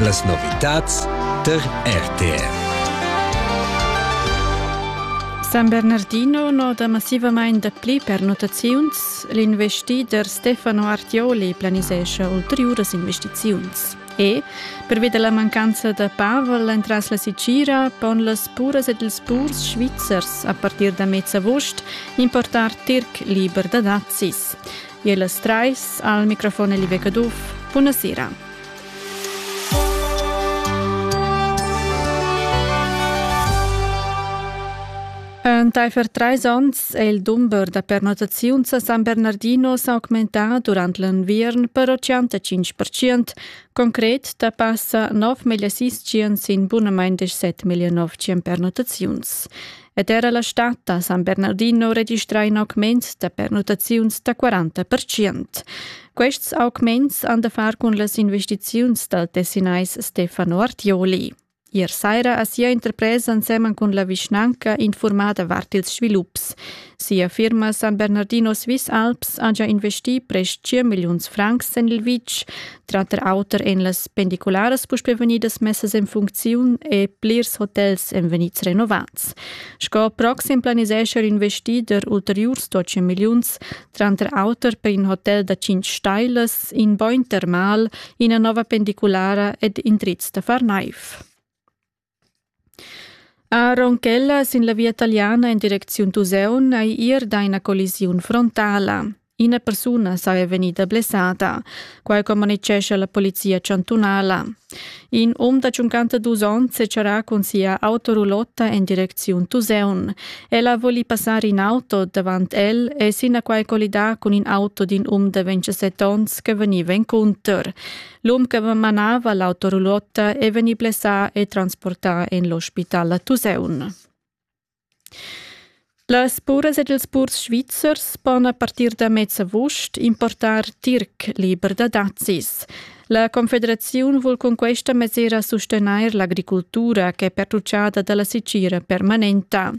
Las novitads tar RTR. San Bernardino noda massivamain dapli pernottaziuns. L'investider Stefano Artioli planisescha ulteriuras investiziuns. E, pervi da la mancanza da Pavel entras la Sicira, pon las puras ed ils purs svizzers a partir da mez avust importar tirc liber da dazis. E las trais al microfon Elibe Caduff. Bună seara! Entaifer trais onns è il dumber da pernottaziuns a San Bernardino s'augmentà durant l'enviern per 85%, concret da passa 9.600 sin bunamain 17.900 pernottaziuns. ed era la stad a San Bernardino registrà in augment da pernottaziuns da 40 percent. Quests augments han da far cun las investiziuns dal tessinais Stefano Artioli. Ier saira ha sia interpresa ensemen cun la vischnanca informada vart ils svilups. Sia firma San Bernardino Swiss Alps ha già investì prest 5 milliuns francs en il vitg, Tranter auter ein las pendicularas puspei vegnidas messas en funcziun e plirs hotels ein vegnids renovats. Sco proxim planisescha il investider ulteriurs 12 milliuns, tranter auter per in hotel da 5 stailas, in bogn termal, ina nova pendiculara ed indrizs da far naiv. Aaron Keller sin la via taliana en direcziun Tuseun ei ir da ina collisiun frontala. Ina persuna saja vegnida blessada, quai communitgescha la polizia chantunala. In um da 52 onns secharà cun sia autorulotta en direcziun Tuseun. Ella voli passar in auto davant el e sinaquai collidà cun in auto d'in um da 27 onns che vegniva encunter. L'um che manava l'auto roulotta è vegnì blessà e transportà en l'ospital a Tuseun. Las puras ed ils purs svizzers pon a partir da mez avust importar tirc liber da dazis. La Confederaziun vul cun questa mesira sustenair l'agricultura che è pertuccada da la sicira permanenta.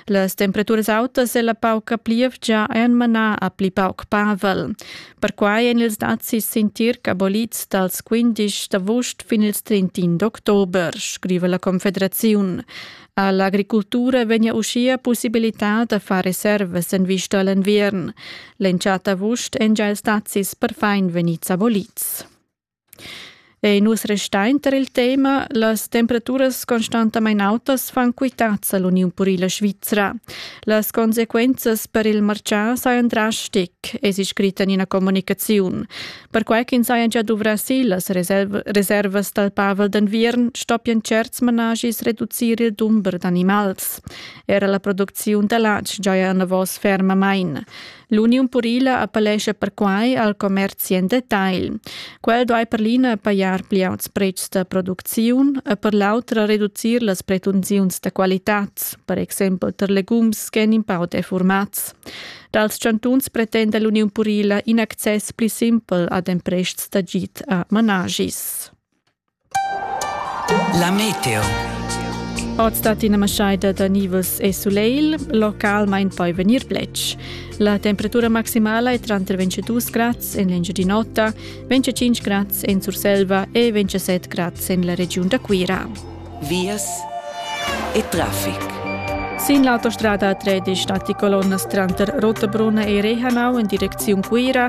Las temperaturas autas e la pauca plievgia han manà a pli pauc pavel. Perquai èn ils dazis sin tirc abolids dals 15 d'avust fin ils 31 d'october, scriva la Confederaziun. A l'agricultura vegnia uschia pussibilità da far reservas en vista a l'enviern. L'entschatta avust èn gia ils dazis perfin vegnids abolids. Ei nus restein tar il tema las temperaturas constantamain autas fan quitads all'Uniun purila svizra. Las consequenzas per il martgà sajan drastic, es scrit en ina communicaziun. Perquai ch'ins haja gia duvrà si las reservas dal Pavel d'enviern, stoppian certs managis reducir il dumber d'animals. Era la producziun da latg giaja enavos fermamain. L'Uniun purila appellescha perquai al commerzi en detagl. Quel duai per l'ina pajar pli auts pretschs da producziun e per l'autra reducir las pretensiuns da qualitad, per exempel tar legums ch'èn in pau defurmats. Dals chantuns pretenda l'Uniun purila in access pli simpel ad emprests d'agid a managis. La meteo. Oz dat ina maschaida da nivus e sulegl, localmain poi vegnir bletsch. La temperatura maximala è tranter 22 grads en l'Engiadin'Ota, 25 grads en Surselva e 27 grads en la regiun da Cuira. Vias e traffic. Sin l'autostrada 3 di stati colonnas tranter Rottabrunna e Rehanau in direcziun Cuira